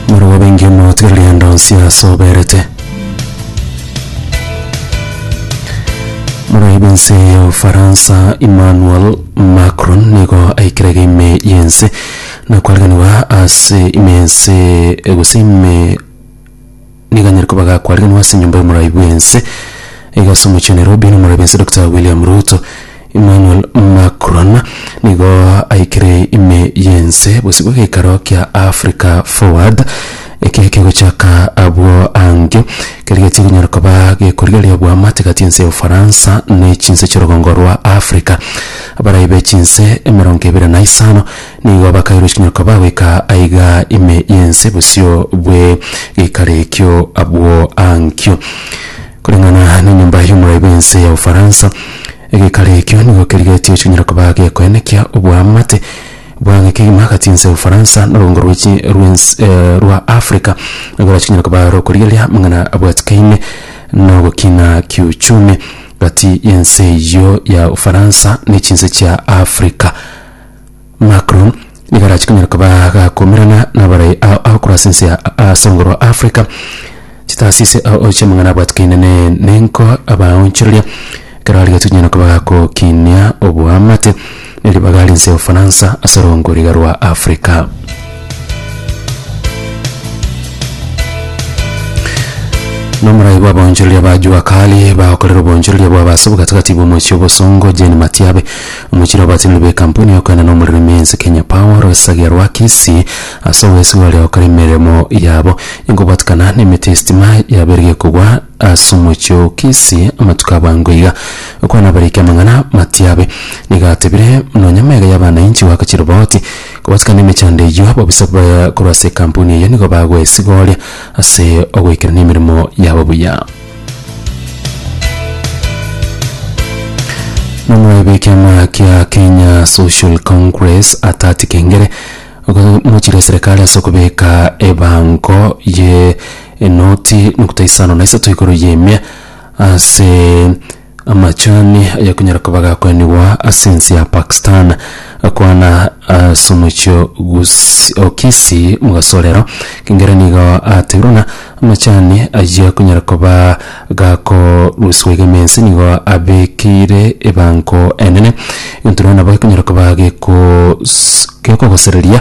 Moroba bainge mogotigera rende onsi aase oberete. Moraia b'ense ya Ufaransa Emmanuel Macron nigo aikire iga ime y'ense na koarigerewa ase ime y'ense gose ime Nigo anyare koba agakwariganwa ase enyomba y'omoraai bw'ense iga ase omochie wa Nairobi na omoraai bw'ense Dokita William Ruto. Emmanuel Macron nigo aikire ime y'ense bosibwe geikaro kia Africa Forward eke kegochaka abwo ange kerigetie konyara koba gekorigereria obwamate gati y'ense ya Ufaransa ne chinse chi'orogongo rwa Africa. Abaraai be chinse emerongo ebere na isano Nigo bakairwe chinyoko bagoika aiga ime y'ense bosio bwe geikaro ekio abwo ankio. Koreng'ana nenyomba y'omorai bw'ense ya Ufaransa, egeikaro ekio nigo kerigetio chinyara koba gekoenekia oboamate bw'ang'e kegima agati ense ya Ufaransa na oboongo rwe chi rw'ens eh rwa Africa, egora chinyara koba rokorigereria amang'ana abwatikaine na ogokina kiuchumi gati y'ense eyio ya Ufaransa ne chinse chia Africa. Macron nigo arachi konyara koba gakumirana nabarai ao ao korwa ase ense ya ase ongoro wa Africa chitaasisi ao ao chiamang'ana abwatikaine ne nenko abaonchoreria ekero arigetie konyara koba gakokinia oboamate na eribaga ria ense ya Ofaransa ase rongoriga rwa Africa. Nomorai bw'abaonchoreria ba Jua Kali bagokorera oboonchoreria bwabo ase obogatagati bw'omochie obosongo Jane Matiabe Mochire abatiniri b'ekampuni y'okoenda nomorero ime ense Kenya Power Rosagia rwa Kisii ase obwesigwa baria gokora emeremo yabo igobwatikana nemeti y'esitima yaberigia kogwa ase omochie o Kisii amatuko abange iga. Okwana abariki amang'ana matiabe nigo atebire nonya maiga y'abanainchi goakachia riboti kobwatikana emechando eyio ababisa korwa ase ekampuni eyio nigo bagoesigoria ase ogoikerania emeremo yabo buya. Nomoraibi w'ekiama kia Kenya Social Congress Atati Kengere ogomochire eserekari ase okobeka ebango ye enoti nokta isano na isato igoro y'emia ase Amachani ayakonyara koba gakoenigwa ase ense ya Pakistan akwana ase omochie Gusi- o Kisi mogasorero kengere nigo ateirwe ng'a amachani ayio akonyara koba gakorusiwa iga ime ense nigo abekeire ebango enene egento rero nabo gekonyara koba gekoos- gekogosereria